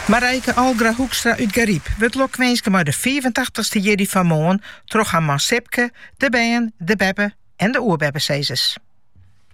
Marijke Algra Hoekstra út Garyp wurdt lokwinske mei de fiifentachtich-ste jierdei fan moarn troch har man Sipke, de bern, de beppe- en de oerbeppesizzers.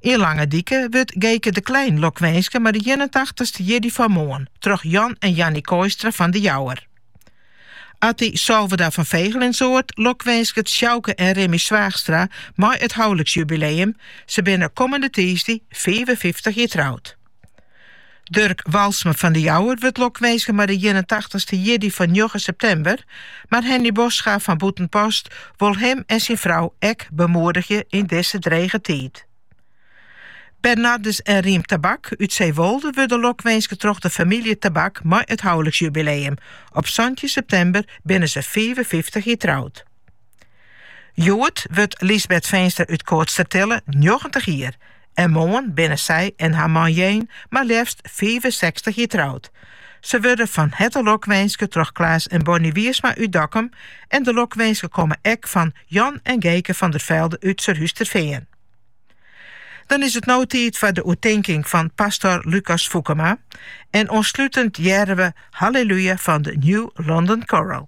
Yn Langedike wurdt Geke de Klein lokwinske mei de ienentachtich-ste jierdei fan moarn troch Jan en Jannie Kooistra fan De Jouwer. Atty Salverda fan Vegelinsoard lokwinsket Sjouke en Remmy Zwaagstra mei it houliksjubileum, se binne kommende tiisdei fiifenfyftich jier troud. Durk Walsma fan de Jouwer wurdt lokwinske mei de ienentachtich-ste jierdei fan njoggen septimber, mar Henny Bosgra fan Bûtenpost wol him en syn frou ek bemoedigje yn dizze drege tiid. Bernardus en Riem Tabak út Zeewolde wurde lokwinske troch de famylje Tabak mei it houliksjubileum, op santjin septimber binne se fiifenfyftich jier troud. Hjoed wurdt Lysbeth Feenstra út Koatstertille njoggentich jier en moarn binne sy en har man Jane mar leafst fiifensechstich jier troud. Se wurde fan herte lokwinske troch Klaas en Bonnie Wiersma út Dokkum en de lokwinsken komme ek fan Jan en Geeke van der Velde út Surhústerfean. Dan is it no tiid foar de oertinking fan pastor Lucas Foekema en oanslutend hearre we Hallelujah fan de New London Chorale.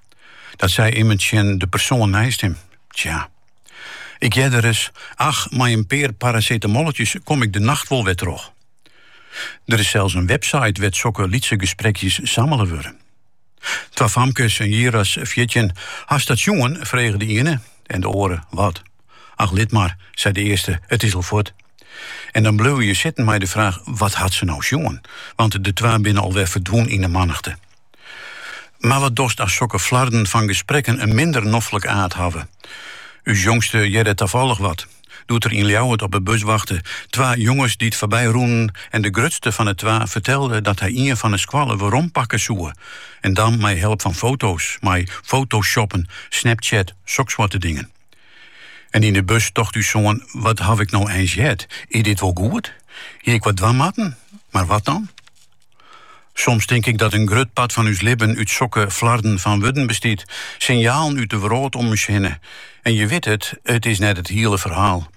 Dat sei immen tsjin de persoan neist him. Tsja. Ik hearde ris, ach, mei in pear parasetamolletjes kom ik de nacht wol wer troch. Der is sels in website wêr't sokke lytse gesprekjes sammele wurde. Twa famkes, in jier as fjirtjin, Hast dat sjoen? frege de iene, en de oare, Wat? Ach, lit mar, sei de earste, it is al fuort. En dan bleauwe je sitten mei de fraach, Wat hat se no sjoen? Want de twa binne al wer ferdwûn yn de mannichte. Mar wat dochst as sokke flarden fan gesprekken in minder noflik aard hawwe? Us jongste hearde tafollech wat, doe't er yn Ljouwert op 'e bus wachte, twa jonges dy't foarby rûnen en de grutste fan 'e twa fertelde dat hy ien fan 'e skoalle werompakke soe en dan mei help fan foto's, mei fotoshoppen, snapchat, soksoarte dingen. En yn 'e bus tocht ús soan, wat haw ik no eins heard, is dit wol goed? Hie ik wat dwaan moatten? Mar wat dan? Soms tink ik dat in grut part fan ús libben út sokke flarden fan wurden bestiet, sinjalen út de wrâld om ús hinne. En je witte it, it is net it hiele ferhaal.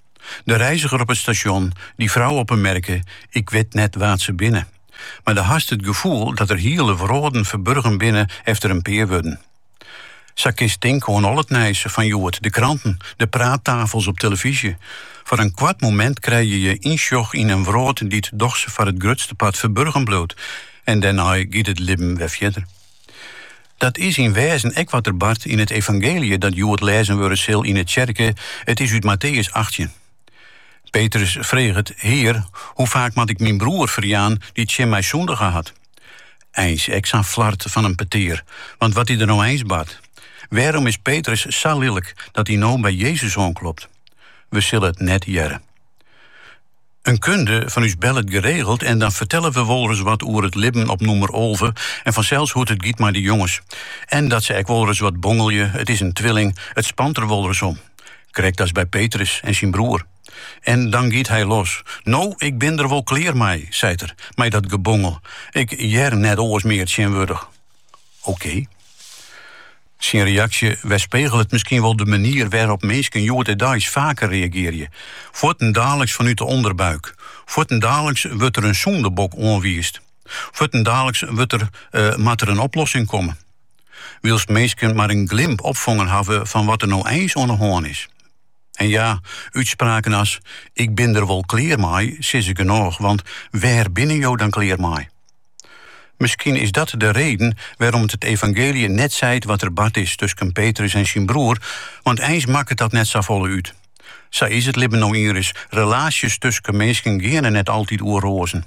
De reiziger op it stasjon, dy frou op 'e merke, ik wit net wa't se binne. Mar do hast it gefoel dat der hiele wrâlden ferburgen binne efter in pear wurden. Sa kinst tinke oan al it nijs fan hjoed, de kranten, de praattafels op telefyzje. Foar in koart momint krije je ynsjoch yn in wrâld dy't dochs foar it grutste part ferburgen bliuwt en dêrnei giet it libben wer fierder. Dat is yn wêzen ek wat der bart yn it evangeelje dat hjoed lêzen wurde sil yn 'e tsjerke, it is út Matteüs achttjin. Petrus freget, Hear, hoe faak moat ik myn broer ferjaan dy't tsjin my sûndige hat? Eins, ek sa'n flart fan in petear, want wat is der no eins bart. Wêrom is Petrus sa lilk dat hy no by Jezus oanklopt? We sille it net hearre. In kunde fan ús bellet geregeld en dan fertelle we wolris wat oer it libben op nûmer alve en fansels hoe't it giet mei de jonges. En dat se ek wolris wat bongelje, it is in twilling, it spant der wolris om. Krekt as by Petrus en syn broer. En dan giet hy los. No, ik bin der wol klear mei, seit er, mei dat gebongel. Ik hear net oars mear tsjinwurdich. Oké. Syn reaksje werspegelet miskien wol de manier wêrop minsken hjoed-de-deis faker reagearje. Fuortendaliks fanút de ûnderbuik. Fuortendaliks wurdt der in sûndebok oanwiisd. Fuortendaliks wurdt der, moat der in oplossing komme. Wylst minsken mar in glimp opfongen hawwe fan wat der no eins oan 'e hân is. En ja, útspraken as, ik bin der wol klear mei, sizze genôch, want wêr binne jo dan klear mei? Miskien is dat de reden wêrom't it evangeelje net seit wat der bard is tusken Petrus en syn broer, want eins makket dat net safolle út. Sa is it libben no ienris, relaasjes tusken minsken geane net altyd oer roazen.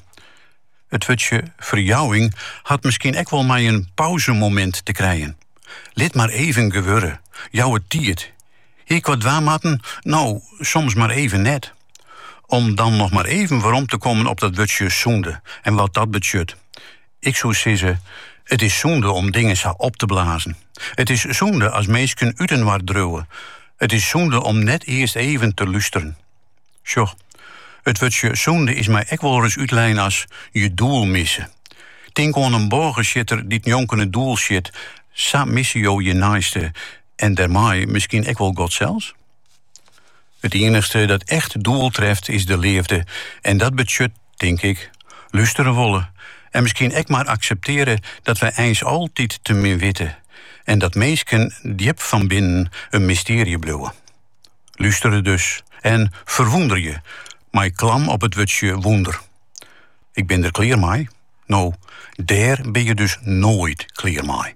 It wurdsje ferjouwing hat miskien ek wol mei in pauzemomint te krijen. Lit mar even gewurde, jou it tiid, Hie ik wat dwaan moatten? No, soms mar even net. Om dan noch mar even werom te kommen op dat wurdsje sûnde en wat dat betsjut. Ik soe sizze, it is sûnde om dingen sa op te blazen. It is sûnde as minsken útinoar driuwe. It is sûnde om net earst even te lústeren. Sjoch, it wurdsje sûnde is my ek wolris útlein as je doel misse. Tink oan in bôgesjitter dy't njonken it doel sjit, sa misse jo je neiste. en dêrmei miskien ek wol God sels? It iennichste dat echt doel treft is de leafde en dat betsjut, tink ik, lústere wolle en miskien ek mar akseptearje dat wy eins altyd te min witte en dat minsken djip fan binnen in mystearje bliuwe. Lústere dus en ferwûnderje, mei klam op it wurdsje wûnder. Ik bin der klear mei? No, dêr bin je dus noait klear mei.